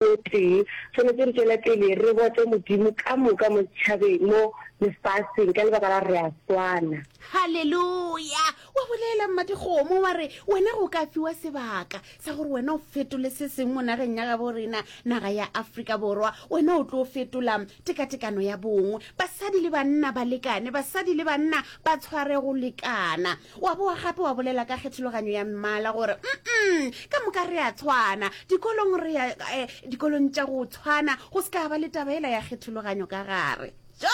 o tee, swanetše re tšwele pele re bote Modimo ka moka mo setšhabeng, mo lefaseng, ka lebaka la gore re a swana. Haleluya! Wa bolela, Mmadikgomo, wa re wena go ka fiwa sebaka sa gore wena o fetole se sengwe mo nageng ya gabo rena, naga ya Afrika Borwa. Wena o tlo fetola tekatekano ya bong, basadi le banna ba lekane, basadi le banna ba tshware go lekana. Wa boa gape wa bolela ka kgethologanyo ya mmala gore, mm, ka moka re a tshwana. Dikolong re ya eh, dikolong tša go tshwana, go se ka ba le taba ela ya kgethologanyo ka gare. Jo!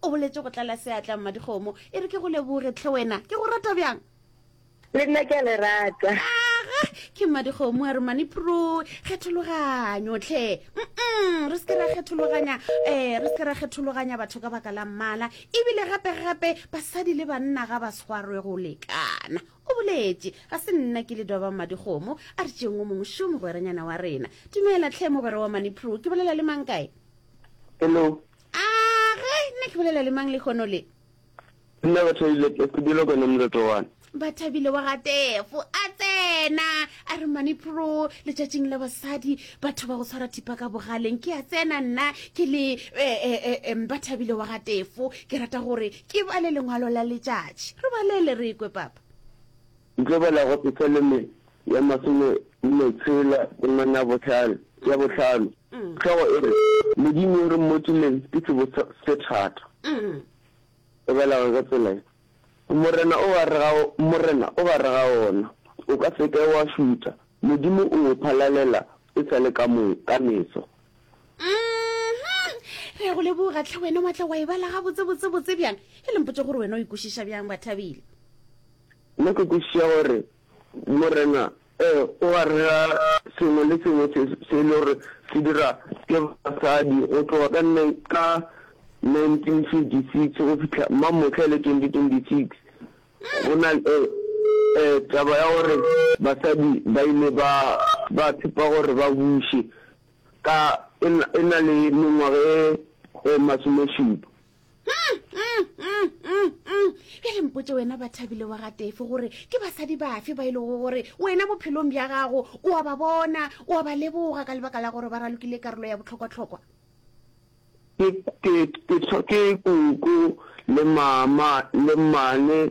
O boletše go tlala seatla, Mmadikgomo. E re ke go leboge, tlhe wena. Ke go rata bjang? Le nna ke a le rata. Aga, ke Mmadikgomo a re, Mani Pro, kgethologanyo, tlhe. Mm, re se ke ra kgethologanya, eh, re se ke ra kgethologanya batho ka baka la mmala. ebile gape-gape basadi le banna ga ba tshwarwe go lekana o boletše ga se nna ke le doba madikgomo a re tšeng o mongwe šo mogweranyana wa rena dumela tlhe mogwera wa manipro ke bolela le mang kae hello a ge nna ke bolela le mang le kgono le nna batho ile ke sebile kone motsoto wane Bathabile wa ga Tefo a tsena a re manipro letšatšing la basadi batho ba go tshwara thipa ka bogaleng ke a tsena nna ke le eh, eh, eh, eh, Bathabile wa ga Tefo ke rata gore ke ba le lengwalo la letšatši re balele re ekwe papa Ntlobela go se seleme ya masome nne tshela temana ya bohlano ya bohlano mm. tlhogo e re modimo o re mmotšileng ke sebo se thata mm. e belago ka tsela Morena o gare ga, Morena o gare ga ona, o ka se ke wa šutha, Modimo o o phalalela e sa le ka mo, ka meso. Mm-hmm. Re a go leboga, tlhe, wena wa tla wa e bala gabotse, botse, botse bjang. E le mpotše gore wena o e kwešiša bjang, Bathabile. Nna ke kwešiša gore Morena Ee, o a rera sengwe le sengwe se se le gore se dira ke basadi go tloga ka ka 1956 go fihla mmamohla e le 2026. Go na le taba ya gore basadi ba ile ba ba tshepa gore ba buše ka e na le mengwaga e masomešupa. bjale mpotse wena ba thabile wa gatefe gore ke basadi bafe ba e lego gore wena bophelong bja gago o wa ba bona o wa ba leboga ka lebaka la gore ba ralokile karolo ya botlhokwatlhokwa ke ke ke ke kuku le mama le mmane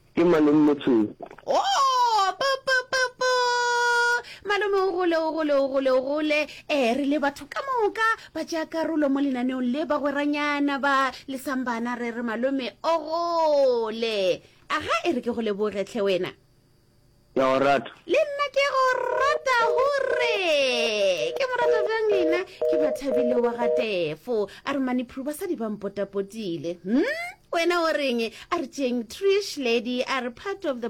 Ke malome Motshweu. Ooh bo bo bo bo Malome o gole o gole o gole o gole eh re le batho ka moka ba tšea karolo mo lenaneong le bagweranyana ba lesang bana re re malome o gole aga e re ke go leboge tlhe wena Ke a o rata. Le nna ke go rata hurre ke mo rata bjang lena ke bathabile wa ga tefo a re maniphulu basadi ba mpotapotile hm wena o reng a re tšeng trish lady a re part of the